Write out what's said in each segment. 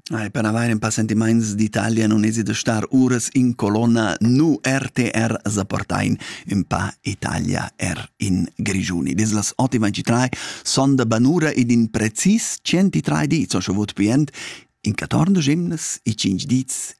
Ai, per avair un pa sentimaints d'Italia non esi de star uras in colonna nu RTR zapportain un pa Italia er in Grigiuni. Dis las 8.23 son de banura ed in precis 103 di, so scho vot pient, in 14 gimnes e 5 dits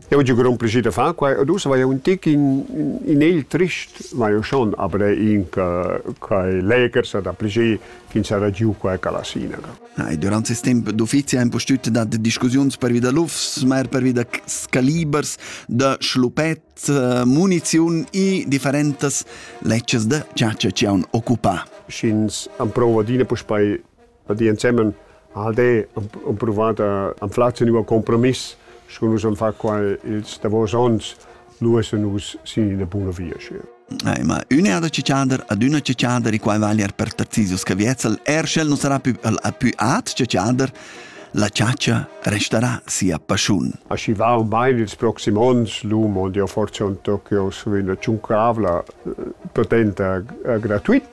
Eu giu grond plascher da far quai ed ussa vai un tic in, in il trist, vai eu schon avrei in quai leger sa da plascher ch'in sarà giu quai calasina. E durant ses temp d'uffizi ha impustüt dat discussiuns pervi da lufs, ma er pervi da calibers, da schlupet, eh, muniziun e differentas lecces da chatscha ci haun occupà. Sch'ins am prova d'ina puspei di ensemen al de ho provat da anflar ün nuov compromiss sco nus am fa qua ils davos ons lu es nus sin ina buna via schi. Eh, ma üna da ciciander ad üna ciciander i quai vali er per Tarzisius Caviezzel er sch'el non sarà più più at ciciander la ciaccia resterà sia pasciun. Aschi va un bain ils proxim ons l'umo di forse un Tokyo su una ciuncavla eh, potenta eh, gratuit